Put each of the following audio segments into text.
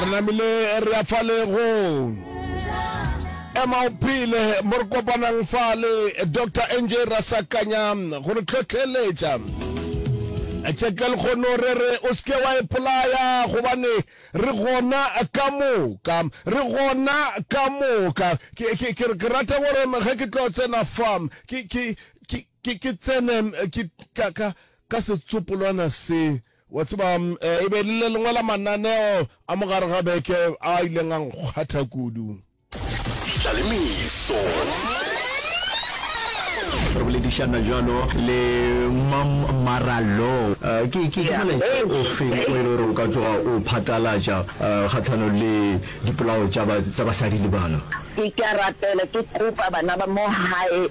re namile re ya fale go ema o phele mo re kopanang fale dr nj rasakanya go re tlhotlheletša tšeke lekgono re re o seke wa epolaya gobane re gona ka moka re gona ka moka ke ke- ke- ke rata gore ge ke tlo tsena fa ke ke- ke- ke- ke tsene ke ka- ka ka setsopolwana se, wa tseba, e be e le le lengwe la mananeo a mo gare ga beke a ileng a nkgwatha kudu. Ditla le meso. Re boledišana bjalo le Mam Marallo. Ke, ke, ke molaetša ofe o e le gore o ka tloga o phatlalatša kgahlanong le dipolao tša ba, tša basadi le bana? Ke, ke a rapela, ke kopa bana ba mo gae.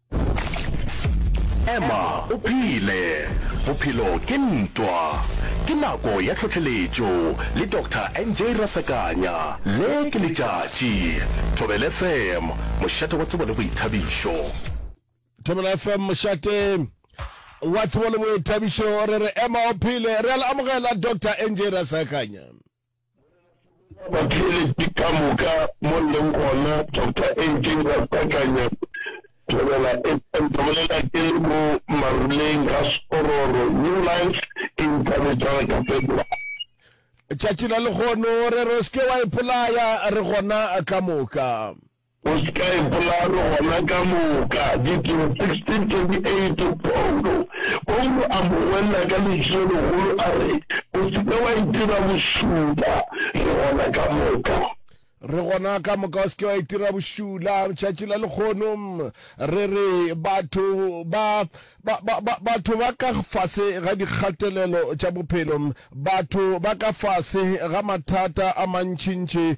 Ema o phele! Bophelo ke ntwa! Ke nako ya tlhohleletšo le Doctor NJ Rasakanya. Le ke letšatši. Thobela FM, mošate wa tsebo le boithabišo. Thobela FM, mošate wa tsebo le boithabišo. Re re ema o phele! Re a le amogela Doctor NJ Rasakanya. Batheeletši ka moka mo leng gona, Doctor Enkeng Ratakanya, Thobela FM, ka bolela ke le mo maruleng ga Spororo, New Life e nthabetšaga ka February. Tšatši la lehono re re o se ke wa ipolaya re gona ka moka. O se ka ipolalo gona ka moka. Ditiro 16:28, Paulo Paulo a mo ngwella ka lentšu le legolo a re, O se ke wa itira bošula. Re gona ka moka. Re gona ka moka, o se ke wa itira bošula. Tšatši la lekgono re re batho ba, ba, ba, ba, batho ba ka fase ga dikgatelelo tša bophelo, batho ba ka fase ga mathata a mantšintši,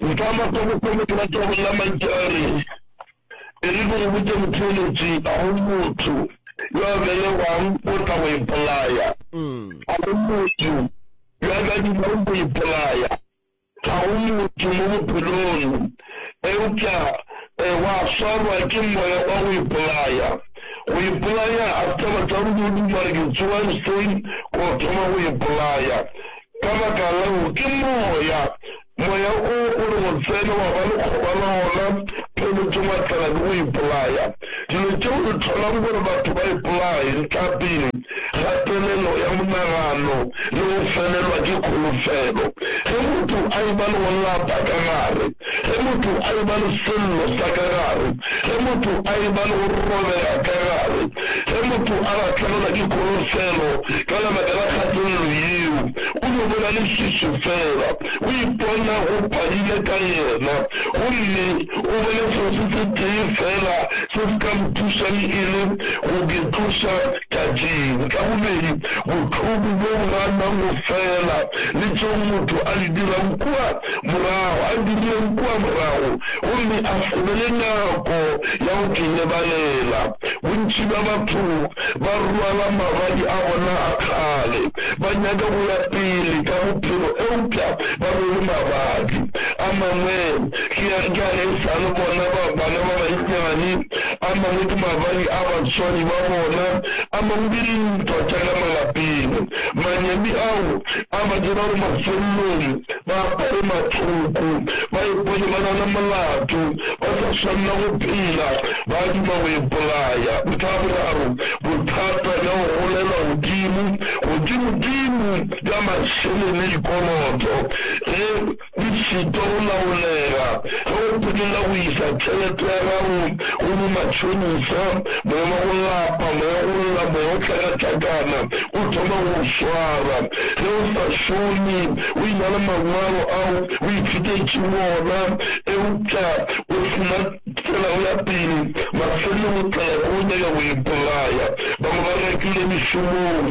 Nka makwa bokone ke batla go lla mantšu a re, E re ke go botše motheeletši, ga go motho yo a belegwang o tla go ipolaya, ga go motho yo a ka dimago go ipolaya, ga go motho mo bophelong, eupša wa swarwa ke moya wa go ipolaya. Go ipolaya ga se taba sa go yo duma re ke tsoga goseng ke go thoma go ipolaya. Ka baka leo, ke Moya. Moya o o re o tsene, wa ba lekgoba la ona, pele ke wa tlala le go ipolaya. Dilo tšeo di hlolang gore batho ba ipolaye, ntlhapedi, kgatelelo ya monagano le go felelwa ke kholofelo ge motho a eba le go lapa ka gare. Ge motho a e-ba le sello sa ka gare, ge motho a e-ba le go robega ka gare, ge motho a lahlegelwa ke kholofelo ka lebaka la kgatelelo yeo, o no bona lešušu fela, o ipona go pharile ka yena, gomme o bone selo se setee fela se se ka mo thušang e le go ke tloša tatšing. Sa bobedi, bohloko bjo bo ganang go fela le tšeo motho a di dirago kua morago, a direng kua morago gomme a se be le nako ya go ke lebalela. Bontši bja batho ba rwala magadi a bona a kgale, ba nyaka go ya pele ka bophelo eupša ba rwele magadi a mangwe. Ke a, ke a e sa le bona ba, bana ba bannyane, a mangwe ke magadi a batswadi ba bona, a mangwe ke dintwa tša ka malapeng. Manyami ao a ba dira gore mafelelong ba apare mathoko, ba ipone ba na le molato, ba sa swanela go phela, ba duma go ipolaya. Ntlha ya boraro, bothata bja go golela godimo, godimodimo bja mašeleng le dikoloto. Ge di šitwa go laolega, ge o phelela go iša tšhelete ya gago go bomatšhonisa, moya wa go lapa, moya wa go lla, moya wa go hlakahlakana o thoma go o swara. Ge o sa šome, o e-na le mangwalo ao o ithutetšego ona eupša o se na tsela ya pele, mafelelong o tla ya go nyaka go ipolaya. Bangwe ba rekilwe mešomong.